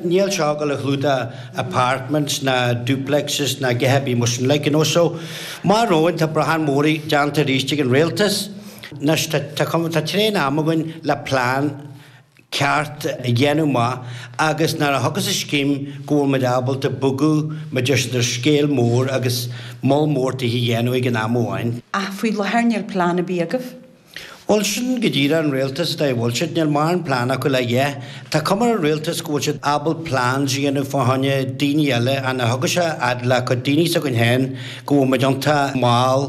Níl seo ag gabháil a chlúdach apartments ná duplexes ná a dhath ar bith mar sin like, you know, so mo bharúil tá brachán mór déanta arís ag an Rialtas. Anois tá tá cuma tá tréan ama againn le plean ceart a dhéanamh maith agus nuair a thiocfas an scéim go bhfuil muid ábalta bogadh muid ar ar scála mór agus moll mór tithe a dhéanamh ag an am amháin. Ach faoi láthair níl plean ar bith agaibh. Bhuel, sin go díreach an rialtas go bhfuil siad. Níl mórán plean acu le a dhath. Tá cuma ar an rialtas go bhfuil siad ábalta plans a dhéanamh fá choinne daoine eile ach nuair a thiocfas a fhad le cuid daoine s'againn féin go bhfuil muid iontach mall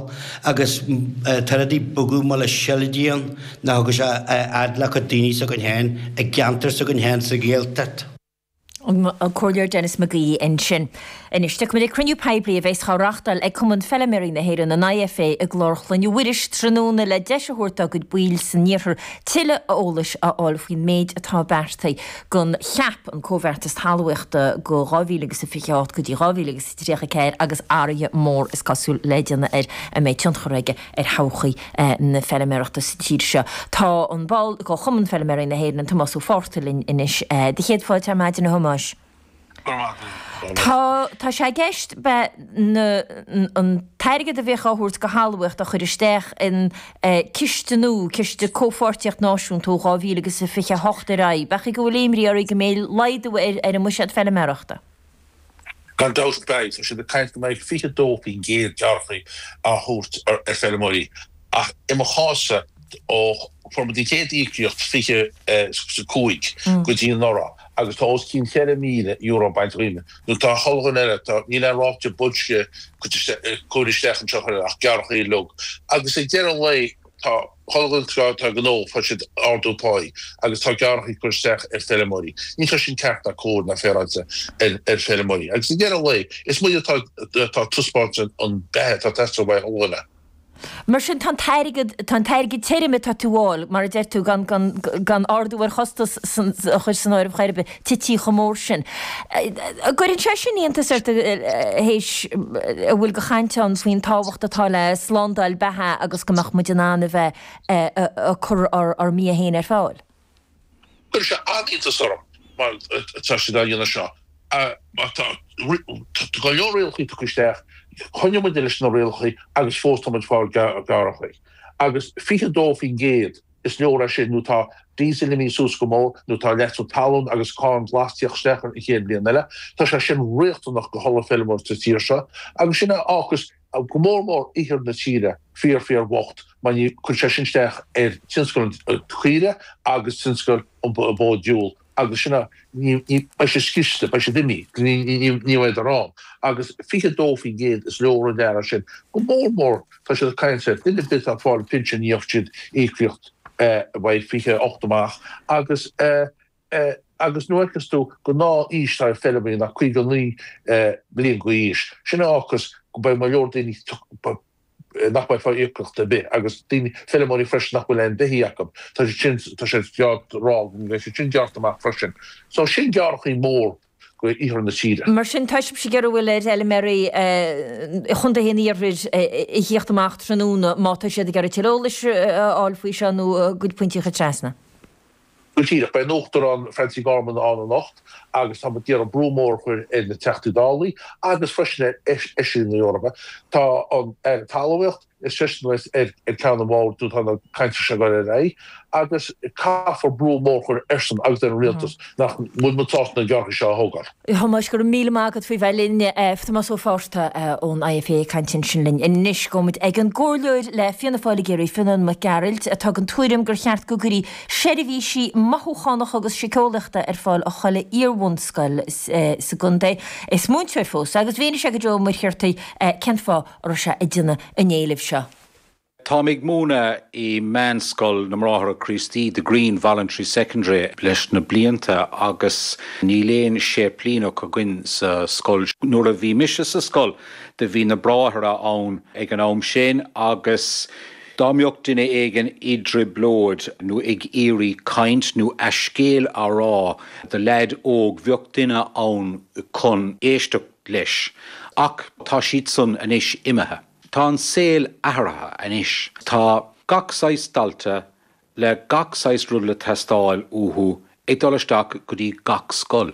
agus tá rudaí bogadh mall le seilide nuair a thiocfas a fhad le cuid daoine s'againn féin i gceantar s'againn féin sa Ghaeltacht. Comhairleoir Denis McGee ansin. Anois, tiocfaidh muid ag cruinniú poiblí a bheas á reáchtáil ag Cumann Feilméaraí na hÉireann, an IFA, i gClár Chloinne Mhuiris tráthnóna le deis a thabhairt dá gcuid baill san iarthar tuilleadh eolais a fháil faoin méid atá beartaithe don CAP, an Comhbheartas Talmhaíochta ó 2028 go dtí 2034 agus athruithe móra is cosúil le déanamh air a mbeidh tionchar aige ar thodhchaí na feilméarachta sa tír seo. Tá an ball de Chumann Feilméaraí na hÉireann, Tomás Ó Fátharta linn anois. Do chéad fáilte ar maidin a Thomáis. Go raibh maith agat. Tá, tá sé i gceist ab ea, an, an t-airgead a bheadh á thabhairt do thalmhaíocht a chur isteach in ciste nua, ciste comhpháirtíocht náisiúnta ó 2028 ar aghaidh. Ab é an chaoi go bhfuil imní oraibh go mbeidh laghdú ar an mbuiséad feilméarachta? Gan dabht ar bith, tá siad ag caint go mbeidh 22% gearrthaí á thabhairt ar feirmeoirí, ach i mo chás-sa, ó fuair muid an chéad íocaíocht 25 go dtí anuraidh, agus tá os cionn €4,000 bainte díom, nó tá chuile dhuine eile, níl aon ráta boilscithe curtha isteach anseo ach gearrthaí uilig, agus ag deireadh an lae, Tá comhlachtaí gnó tá siad ag ardú páí agus tá gearrthaí á gcur isteach ar feirmeoirí. Ní tá sin ceart ná cóir ná féaráilte ar ar feirmeoirí. Agus ag deireadh an lae, is muid atá atá taispeáint an an beatha atá teastáil uaidh an duine. Mar sin, tá an t-airgead tá an t-airgead tirim atá tú fháil, mar a deir tú, gan gan gan ardú ar chostais a chur san áireamh chor ar bith. tite chomh mór sin. An gcuireann sé sin iontas ort théis a bhfuil de chaint ann faoin tábhacht atá le slándáil beatha agus go mbeadh muid in ann a bheith ag cur ár mbia féin ar fáil? Cuireann sé an-iontas orm mar tá siad á dhéanamh seo mar tá go leor rialacha tugtha isteach, coinneoidh muid leis na rialacha agus fós tá muid ag fáil gearrthaí agus 22% Is náire é sin nó tá díosal imithe suas go mór, nó tá leasú talún agus cáin ghlas ag tíocht isteach an chéad bhliain eile. Tá sé sin riachtanach do chuile fheilméara sa tír seo, agus sin a fhágfas go mór mór iarthar na tíre fíor fíor bhocht mar ní chuirfidh sé sin isteach ar tionscal an chaora agus tionscal an bhó dhiúil. agus sin ná ní beidh sé sciste, beidh siad imi, ní bheidh ar an. Agus 22% is leor an gearradh sin. Go mór mór tá siad ag caint ar duine ar bith atá ag fáil pinsin ní bhfaighidh siad íocaíocht ar bith 28 amach agus agus nuair a fheicfeas tú gurb é an aois atá ar feilméaraí ná 59 bliain d'aois. Sin é agus go mbeidh go leor daoine nach mbeidh ag fáil íocaíocht ar bith, agus daoine, feilméaraí freisin nach bhfuil aon bheithígh acu. Tá siad sin, tá sé ceart a rá go mbeidh siad sin gearrtha amach freisin. So sin gearrthaí mór do iarthar na tíre. Mar sin, tá sibhse ag iarraidh, bhuel, ar fheilméaraí i gcontaetha an iarthair a thíocht amach tráthnóna, má tá siad ag iarraidh tuilleadh eolais a fháil faoi seo nó a gcuid pointí a chur trasna, Go díreach, beidh an tUachtarán Francie Gorman ann anocht agus tá muid ag iarraidh brú mór a chur ar na Teachtaí Dála agus freisin ar Fheisirí na hEorpa. Tá an tAire Talmhaíocht is eisean atá ar cheann an bhoird nuair atá na cainteanna sin ag dul ar aghaidh agus caithfear brú mór a chur airsean agus ar an Rialtas nach bhfuil muid sásta na gearrthaí seo a thógáil. A Thomáis, go raibh míle maith agat faoi bheith linn. Tomás Ó Fátharta ón IFA ag caint ansin linn. Anois, gabhfaidh muid ag an gcomhairleoir le Fianna Fáil i gCiarraí, Fionnán Mac Gearailt, atá den tuairim gur cheart go gcuirfí seirbhísí mothúchánacha agus siceolaíochta ar fáil i chuile iarbhunscoil sa gcontae. Is múinteoir é fós agus mhínigh sé do Joe Ó Muircheartaigh cén fáth a raibh sé ag déanamh an éilimh seo. Táim ag múineadh i Meánscoil na mBráithre Críostaí, The Green Voluntary Secondary, leis na blianta agus níl aon séiplíneach againn sa scoil. Nuair a bhí mise sa scoil do bhí na bráithre ann ag an am sin agus dá mbeadh duine éigin i dtrioblóid nó ag iarraidh caint nó a scéal a rá do leaid óg bheadh duine ann chun éisteacht leis ach tá siad san anois imithe. Tá an saol athraithe anois. Tá gach saghas dalta le gach saghas rud le teastáil uathu ag dul isteach go dtí gach scoil.